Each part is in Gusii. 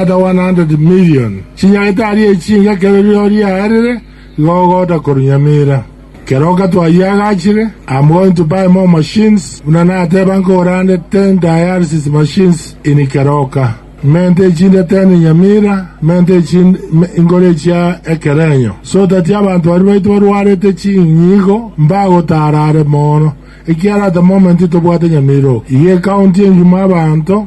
Kata 100 million chinyagete aria echinga ekero rirorio riaerire, igo ogoota korunyamera. Kero okatwayia agachire, I'm going to buy more machines, buna nateba nkogore ande 10 dialysis machines in Keroka. Mente echinde 10 inyamira, mente echinde me, inkore echia ekerenyo. So tati abanto baria baito barwarete chinyigo mbagotaara are moono, ekiara at the moment tobwate nyamira oo. Iga ecounty engima abanto,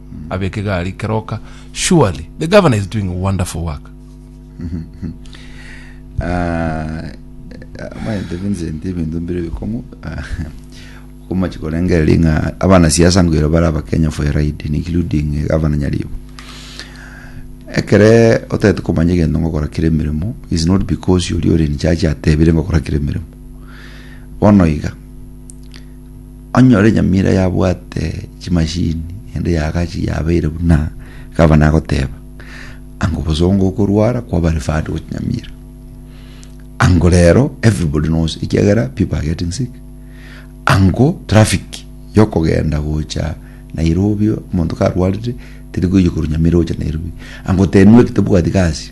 Abeke gari keroka surely the governor is doing a wonderful work. Ah, amaete Vincent ebinto mbire bikong'u ah, okomachi korengereria ng'a abana siasa ngwero bare abakenya for a ride including eh, gavana nyaribo ekere otagete komanya egento ngokora kere emeremo is not because yori ore in charge atebire ngokora kere emeremo bono iga Onye ore nyamira yabwate chimashini ende yagachi yabeire buna gavana agoteba, anga obosongo okorwara kwaba referred gochia Nyamira. Ango rero everybody knows ekiagera people are getting sick. Ango traffic yokogenda gocha Nairobi omonto karwarire teri koyia korwa Nyamira gocha Nairobi. Ango tenwe ekitebwati gasi.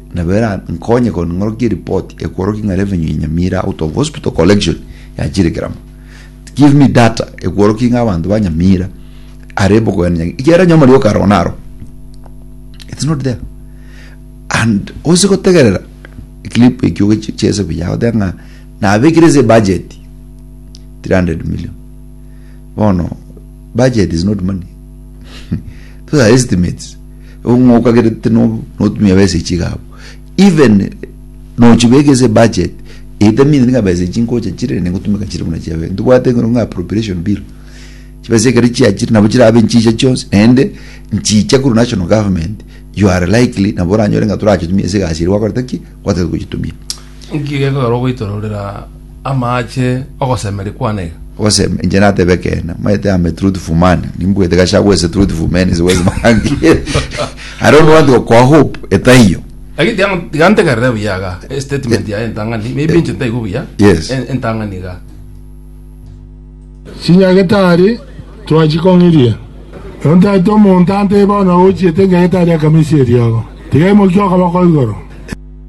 Nabo erankonye korwa ning'orokie eripoti ekworokia ng'a revenue ya Nyamira out of hospital collection yachire keramo. Give me data ekworokia ng'a abanto ba Nyamira are bokogenda Nyagi- ekiagera nyoma rioka aro naro. It's not there. And ose gotegerera clip ekio ogechi- chiese buya goteba ng'a nabekire ase budget 300 million. Bono budget is not money. Those are estimates. Ng'okagerete notumia besa echi iga abwo even nochibeka ase budget etamine niga besa echi nkocha chire rende ngotumeka chire buna chiabera ntobwate ekero ng'a appropriation bill chibesa ekero chiachire nabo chirabe nchicha chionsi naende nchicha korwa national government you are likely nabo oranyore ng'a torachitumia ase egasi eria gwakorete ki gwatagete gochitumia. Inki gekogera ogoitororera amaache ogosemeria kwane iga? Ogoseme, inche nateba ekeene, omanyete am a truthful man, nimbuete Gachagua is a truthful man is wise man. I don't want to kwa hope etaiyo. Lakini tiga- tiga ntegerere buya iga eh, statement yaye entang'ani maybe inche ntaigwe buya Yes. en- entang'ani iga Chinyagetari twachikong'irie. Nontaete omonto ante bono ochiete enyagetari akamisia eriogo. Tiga emokia okoboko igoro.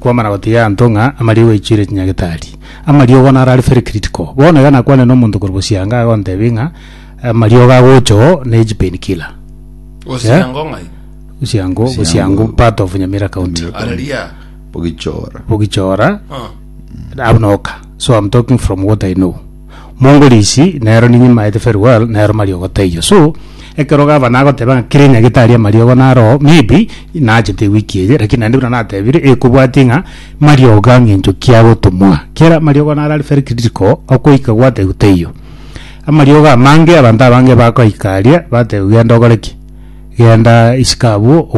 Kwamana gotiga anto ng'a amariogo aichiire chinyagetari. Amariogo naro are very critical. Bono iga nakwanire nomonto korwa Bosianga agontebia ng'a amariogo agocha oo na echi pain killer. Osiango ng'ai? Bosiango, Bosiango. Bosiango part of Nyamira County. Nyamira. Are ria? Bogichora. Bogichora, Ah. Abnoka. So I'm talking from what I know. Mongorisi nero ninyimaete farewell nero mariogo taiyo so ekero gavana agoteba ng'a kera enyagitari amariogo naroo maybe nachete ewiki eye lakini naende buna natebire ekobwatia ng'a mariogo ang'e encho ki agotumwa kera mariogo naro are very critical okoika gwatebiwa taiyo amariogo amange abanto abange bakoika aria batebiwa genda ogore ki genda isiko abwo.